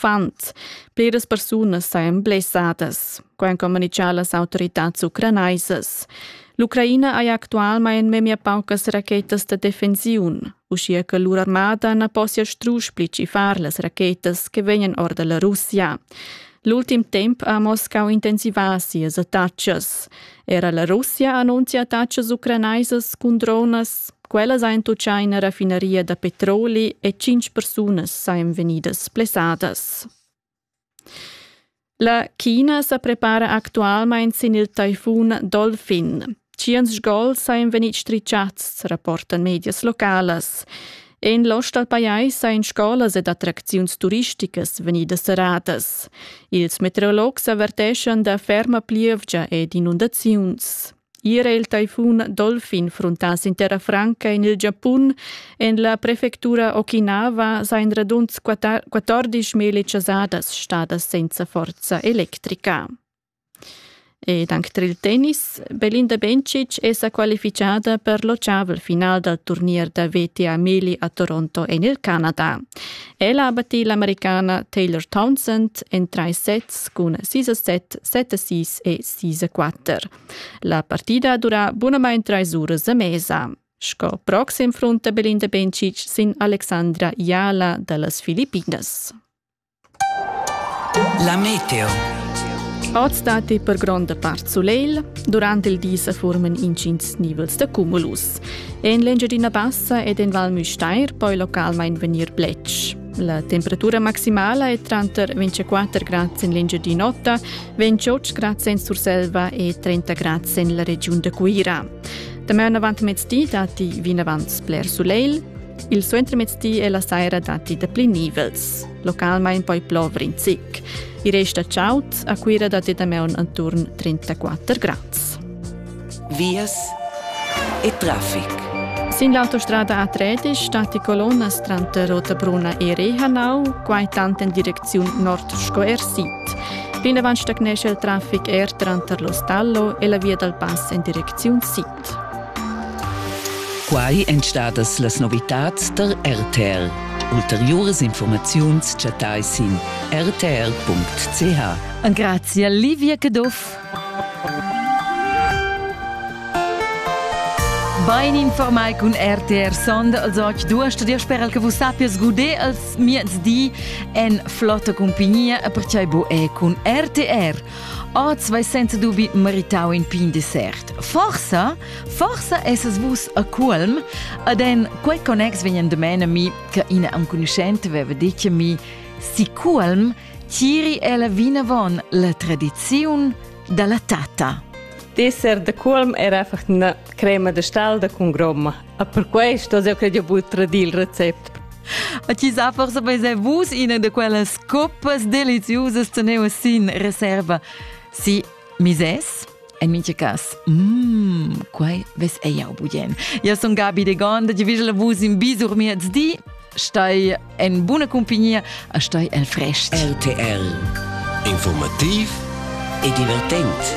Affant. Pliras persunas sajan blessadas, co han communitgà las autoritads ucranaisas. L'Ucraina haja actualmain memia paucas rachetas da defensiun, uschia che lur armada na possia strusch pli far las rachetas che vegnan or da la Russia. L'ultim temp ha Moscau intensivà sias attacas. Era la Russia annuncia attacas ucranaisas cun dronas. Quellas ein tuccai ina raffinaria da petroli e tschintg persunas ein vegnidas plessadas. La China sa prepara actualmein sin il taifun Dolphin. Tschient gols ein vegnit stricciats, rapportan medias localas. En l'ost dal pajais ein scolas ed attracziuns turisticas vegnidas serradas. Ils meteorologs averteschan da ferma plievgia ed inundaziuns. Ier è il taifun Dolphin fruntà sin terra franca en il Giapun. En la prefectura Okinawa sain radund 14 meli chasadas stadas senza forza electrica. Ed anche tra il tennis, Belinda Bencic è sa qualificada per l'occiaval final dal turnier da VTA Meli a Toronto en il Canada. Ella ha battì l'americana Taylor Townsend en trais sets cun 6-7, 7-6 e 6-4. La partida dura bunamain trais uras a mesa. Sco proxim frunta Belinda Bencic sin Alexandra Jala da las Filippinas. La meteo. Oz datti per gronda part sulegl. Durant il di sa forman intgins nivels da cumulus. En l'Engiadina Bassa ed en Val Müstair poi localmain vegnir bletsch. La temperatura maximala è tranter 24 grads en l'Engiadin'Ota, 28 grads en Surselva e 30 grads en la regiun da Cuira. Damaun avant mezdi datti vinavant sper sulegl. Il suentermezdi e la saira datti dapli nivels. Localmain poi plover in zic. Il rest da chaud a Cuira datti damaun attorno 34 grads. vias e traffic. Sin l'autostrada A3 stati colonnas tranter Rotabruna e Rehanau, quai tant en direcziun nord sco er sid. Plinavant stagnescha il traffic er tranter l'Ostallo e la via dal pass en direcziun sid. Quai èn stadas las novitads tar RTR. Ulteriuras informaziuns chattai sin rtr.ch. Grazia Livia Caduff. Bein informai cun RTR Sond, als oggi du hast dir sper che vus sappies guder als miez di en flotta compagnia e perciai bu è cun RTR. Oz vai senza dubi meritau in pin dessert. Forsa, forsa esses vus a Culm, ad en quei connex vegnan de mena mi che ina enconuschente veva detto mi si Culm Tiri ella vinavon la tradiziun dalla tata. D'esser da colm era einfach una crema de stalda con gromma. E per questo io credo bud tradir il recept. A ti sa forse bei sei vus ina de quellas coppas deliziosas teneva sin reserva. Si, Mises En mintga cas, mmm, quai ves ei jau bugen. Ja sun Gabi de Gonda, di vigel vus in bisur miez di, stai en buna cumpagnia, a stai el frest. RTL Informativ e divertent.